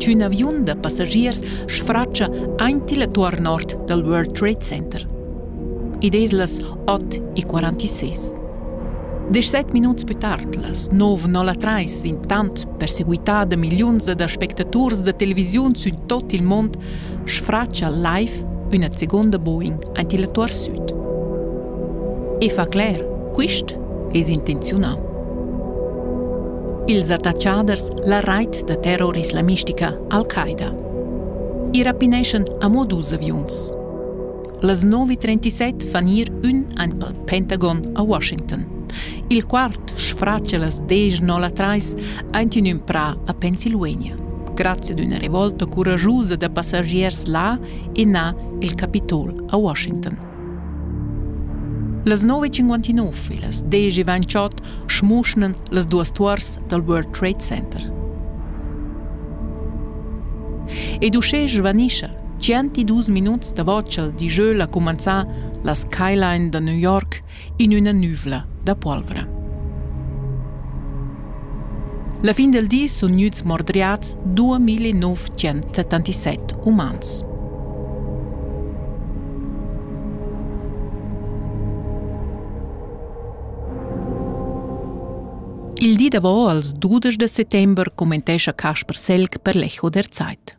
ch'ün aviun da passagiers sfratscha aint illa tuor nord dal World Trade Center. Id es las ot e quarantisés. Deschset minuts pü tard, las nov nolla trais, intant perseguità da milliuns ed aspectaturs da televisiun sün tot il mond, sfratscha live üna seguonda Boeing aint illa tuor süd. E fa cler, quist es intenziunà. Ils attatschaders la rait da terror islamistica Al-Qaida. I rapineschan amo dus aviuns. Las 9.37 fan ir ün aint pel Pentagon a Washington. Il quart sfracia las 10.03 aint in ün prà a Pennsylvania. Grazie d'una revolta couragiusa da passagiers là e na il Capitol a Washington. Las nov e cinquantinov e las desch e ventschot schmuschnan las duas tuors dal World Trade Center. Ed uschè svanischa 102 minuts davo cha'l dijeu l'ha cumanzà la skyline da New York in üna nüvla da polvra. La fin del di sun gnüts mordriats 2977 umans. Il di davo als dudesch da settember commentescha Casper Selg per l'Echo der Zeit.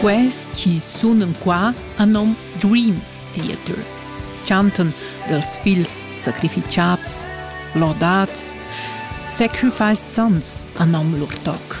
Quels chi sunan qua han nom Dream Theater, chantan dels figls sacrificiats, lordats, sacrificed sons han nom lur toc.